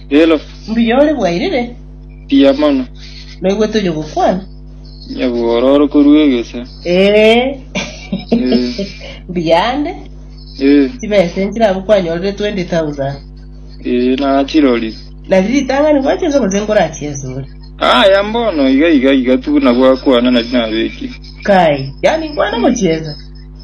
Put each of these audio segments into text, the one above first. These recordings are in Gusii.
Rero Mbuya ore bwairire, mbuya mono. naigwe tonya gokwana. Nyabuororo korwa egese. Ee. Mm. Mbuya ande, Eh, chibesa enchire abwo kwanyorire 20,000. eh, nachirori. Nari ritang'ani gwacha ense gose nkorachiesure. Aya mbono iga iga iga tu nabwo akwana nari nabeki. Kai, yani nkwana gochiesa.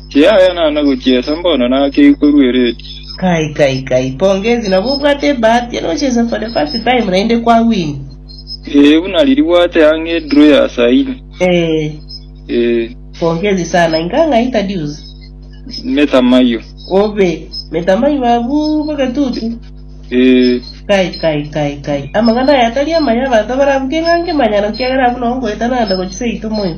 Kiaya naana gochiesa mbono naki ikorwa eredio. Kai kai kai pongezi nabo obwate ebahati nochesa for the first time naende kwa win. Ee buna riribwate ang'e edraw ya saa ine. Eeh. Ee. Pongezi sana inga ng'a introduce. Metamayo. Obe. Metamayo abwo bogetutu. Ee. Kai kai kai kai amang'ana aya tari amaya abanto barabuge ng'a nkemanyano kiagera abwo noo ngoeta naende gochia seito moyo.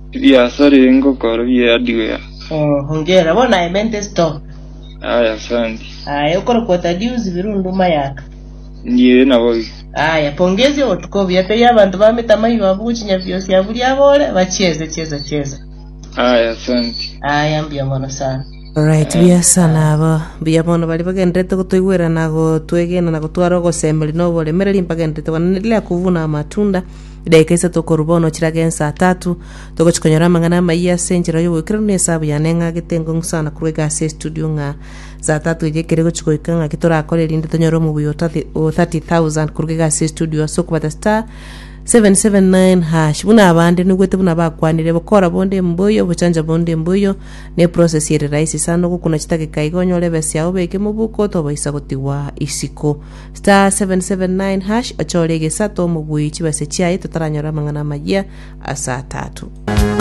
Ebiaso riri ngokora bie hardware. Oh, hongera. Bono I meant a store. Aya, asante. Aye, okore kwa Thaddeus Birundu Mayaka. Ndiye naboigo. Aya, pongezi obotuko obuya. Tei abanto ba mitama igo abwo gochinya biosi aburi abore, ba chieza, chieza, chieza. Aya, asante. Aya, mbuya mono sana. Alright, buya sana aba. Buya mono bari bagenderete gotoigwera na gotwegena na gotwara ogosemeria na oboremereri mbagenderete kwananera ria kuvuna amatunda Edaika isato korwa bono chire age ense atato, togochia konyora amang'ana amayia ase enchera y'oboikeranu na esabu yane eng'agete engong'u sana korwa egasi ya estudio ng'a saa tatu eria ekere gochia goika ng'aki torakore erinde tonyore omobuya o 30 o 30,000 korwa egasi ya estudio ase okobata star 779 hash buna abande nigwete buna bakwanire bokora bonde mboyo bochanja bonde mboyo ne process ere rahisi sana ogokuna chitageka iga onyore ebesa yao obeke mobuko tobaisa gotigwa isiko Star 779# ochore egesato mobuyi chibase chiaye totaranyore amang'ana amayia ase atato.